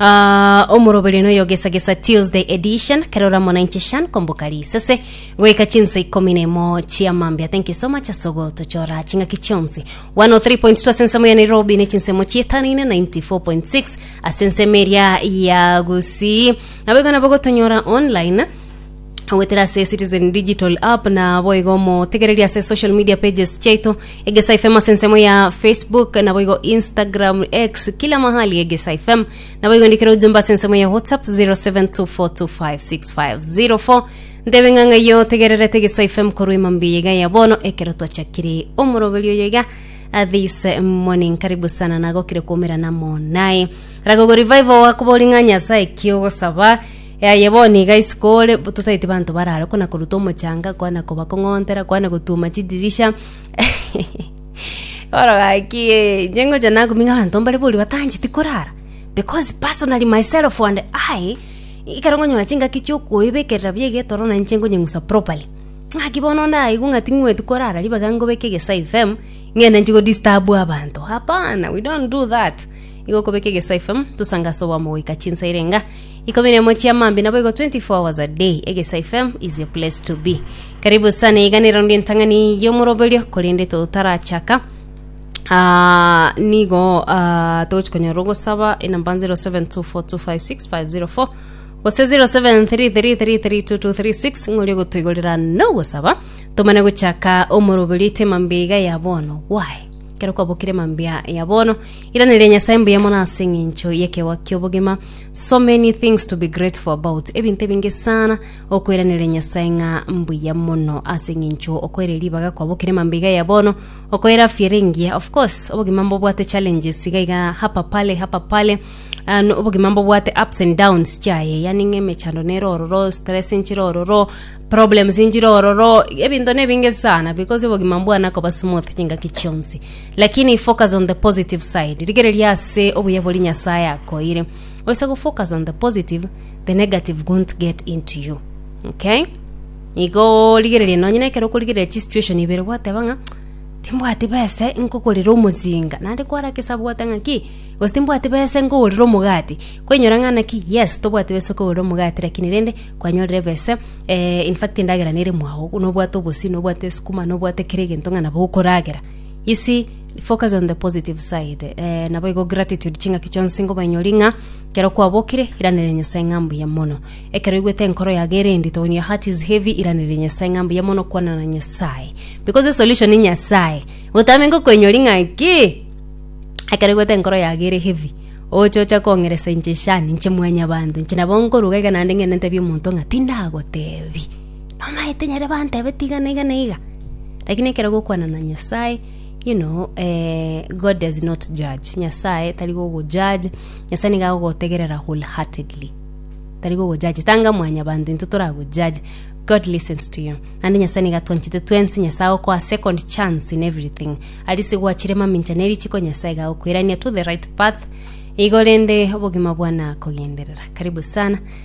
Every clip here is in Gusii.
Ah, omoroberio noyogesagesa Tuesday edition kerora mona inche Shan komboka risese goika chinsa ikomi na imo chia mambia thank you so much asogo tochora ching'aki chionsi 103.2 ase ensemo ya Nairobi ne chinsemo chietanaine 94.6 ase ensemo eria ya Gusii nabo igo nabo gotonyora online Goetera ase Citizen Digital App na boigo omotegereria ase social media pages chiaito Egesai FM ase ensemo ya Facebook na boigo Instagram, X, kila mahali Egesai FM na boigo ndikera ujumbe ase ensemo ya WhatsApp 0724256504 ntebe ng'a ng'ai otegererete Egesai FM korwa emambia iga ya bono ekero twachakire omoroberi oyo iga uh, this uh, morning karibu sana nagokire kuomerana monaye ragogo revival wakobori ng'a nyasae kiogosaba Aye bono iga isiko ore, bo- tosaeti banto barare kona koruta omochanga, kona kobakong'ontera, kona gotuma chidirisha. Bono gaki, eh, inche ngocha nakumia abanto mbare boria batancheti korara, because personally myself and I, ekero nkonyora chingaki chiokoebekerera buya iga etoro nainche nkonyeng'usa properly. Ng'aki bono ndaigwe ng'a ting'weeti korara ribaga ngobeke egesaifem, ng'ende nchi godisturb abanto, hapana, we don't do that. Igo okobeka egesaifem, tosangase obwamo goika chinsa erenga. Ikomi na emo chia mambi naboigo 24 hours a day egesa fm is your place to be karibu sana iganero ndi entang'ani yomoroberio korende totarachaka Ah, nigo ah, togochi konyora ogosaba enamba 0724256504 gose 0733332236 ng'ori ogotoigorera nogosaba tomane gochaka omoroberio ite mambi iga ya bono why kero kwabokire mambia ya bono iranire nyasaye mbuya mono ase eng'encho yekewa kiobogima So many things to be grateful about ebinto ebinge sana okoiraneria nyasaye ng'a mbuya mono ase eng'encho okoire ribaga kwabokire mambe iga ya bono okoire afya ere engiya of course obogima mbobwate challenges iga iga hapa pale hapa pale Ah, no- obogima mbobwate ups and downs chiaye yani ng'a emechando nere ororo stress nchire ororo problems nchire ororo ebinto nebinge sana because obogima mbwana koba smooth chingaki chionsi Lakini focus on the positive side, rigereria ase obuya boria Nyasae akoeire. Oise go focus on the positive, the negative won't get into you. Okay? Igo rigereria nonye nekero okorigereria chisituation ibere gwateba ng'a timbwati bese nkogorera omozinga naende kwara kesabu gwata ng'a ki gose timbwati bese nkogorera omogati kwainyora ng'a naki yes tobwati bese okogorera omogati lakini rende kwanyorire bese eh, in fact endagera nere mwago nobwate obosio nobwate esukuma nobwate kera egento ng'a nabo okoragera You see, focus on the positive side. Eh, naboigo gratitude ching'aki chionsi ngobainyori ng'a kero kwabokire iranere Nyasaye ng'a mbuya mono. Ekero igwete enkoro yaga ere endito when your heart is heavy iranere Nyasaye ng'a mbuya mono kwana na Nyasaye. Because the solution ni Nyasaye. Gotame ngokoinyori ng'a ki? Ekero igwete enkoro yaga ere heavy oche ocha kong'eresa inche shani inche mwanya banto inche nabo nkoruga iga naende ng'ende ntebie omonto ng'a tindagotebi Bamaete nyare bantebe tigana iga na iga. Lakini ekero gokwana na Nyasae, you know God does not judge, Nyasae tari gogo judge, Nyasae nigo agogotegerera whole heartedly. Tari gogo judge, tanga mwanyabanto intwe tore ago judge, God listens to you. Naende Nyasae nigo atwanchete twensi, Nyasae agokoa second chance in everything. Aria ase gwachire mamincha ne richiko Nyasae iga agokoirania to the right path, igo rende obogima bwane akogenderera. Karibu sana.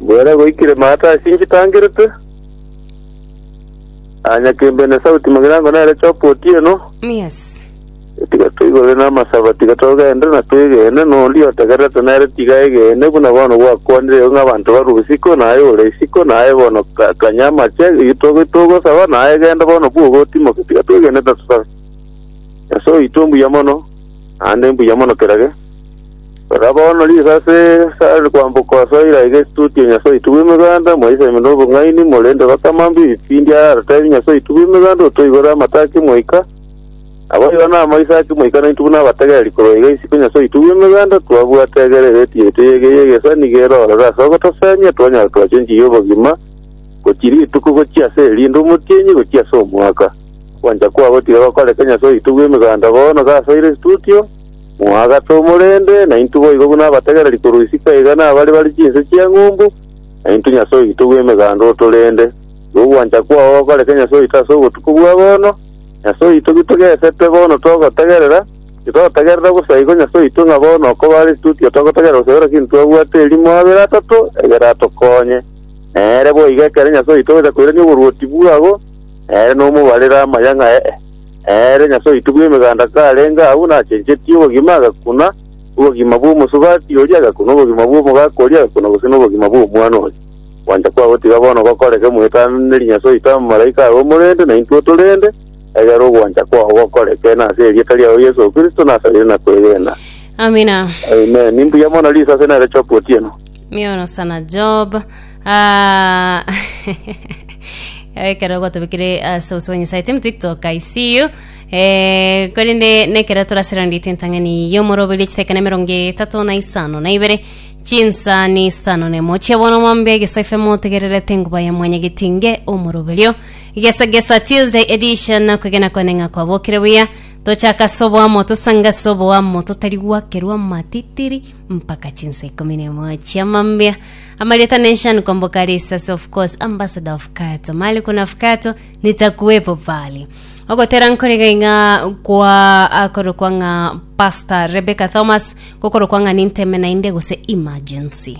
Bwera goikire maata ase inche tangerete, aa nyakembe na esauti mogirango nere choka otieno. Yes. Tiga toigorere namasaba, tiga togende na twegene, na ondia otegererete nere tiga aegene, buna bono gwakwanire igo ng'abanto barue bosiko, na aye ore isiko, na aye bono ka- kanya amache, eyio togo- togosaba, na aye genda bono bwogo otimoke, tiga twegene na tosabe. Nyasae oito mbuya mono, naende mbuya mono kerage. Rora bono risase rikare kwamboka ase eira iga etuti ya Nyasae oito bw'Emeganda, mwaisemi nobong'aini, morende bakamambia ebipindi ara aratebie Nyasae oito bw'Emeganda, Otoigore amato a kemoika, naboigo namaiso a kemoika naintwe buna abategereri korwa iga isiko Nyasae oito bw'Emeganda, twabwate egere egeti yaito eyege y'egesa nigo ere ororo ase ogotoseemia, twanyare twacha enchiri y'obogima gochia rituko gochia ase erinde omotienyi gochia ase omwaka. Gwancha kwabo tiga gokoreka Nyasae oito bw'Emeganda bono gasoire estuti oo, Moagase omorende, naintwe boigo buna abategereri korwa isiko iga nabare bare chinse chi'eng'umbu, naintwe Nyasae oito bw'emeganda otorende. Igo ogwancha kwao gokoreke Nyasae oito ase obotuko bwa bono. Nyasae oito, gitogesete bono togotegerera, titotegerera bosa igo Nyasae oito ng'a bono okobare titotio togotegerera gose ekero kende twabwate erimo abere atato egere atokonye. Nere boigo ekero Nyasae oito ogocha koirania oboruoti bwabo, nere nomobarere amaya ng'a ee. Ere Nyasae oito bw'emeganda karenge agwo nachenchetie obogima, agakuna obogima bw'omosubati oria, agakuna obogima bw'omogaka oria, agakuna gose nobogima bw'omwana oria. Gwancha kwabo tiga bono gokoreke moetananeri Nyasae oito abamalaika aye omorende, na intwe otorende, egera ogwancha kwao gokoreke, na ase erieta riao Yeso Kristo nasabire na kwegena. Amina. Amen. Ni mbuya mono risase nere Chopu otieno. Miono sana Job. Ah, ekero gotobekire ase obosio bwa Nyasae team TikTok, I see you. Eh, korende nekero toraserandite entang'ani y'omoroberio chiseke na emerongo etato na isano na ibere chinsa ni isano na emo chia bono mwambe gesoife motegererete nguba ya mwanyagetinge omoroberio gesa gesa Tuesday edition na kwegena kwane ng'a kwabokire buya tochaka soboamo tosanga soboamo totari gwakerwa matitiri mpaka chinsa ikomi na emo chiamambia amarieta nation komboka risasi of course ambassador of kato mali kuna fkato nitakuwepo pali ogotera nkorega ing'a kwa akorokwa ng'a pastor rebecca thomas gokorokwa ng'a ninteme nainde gose emergency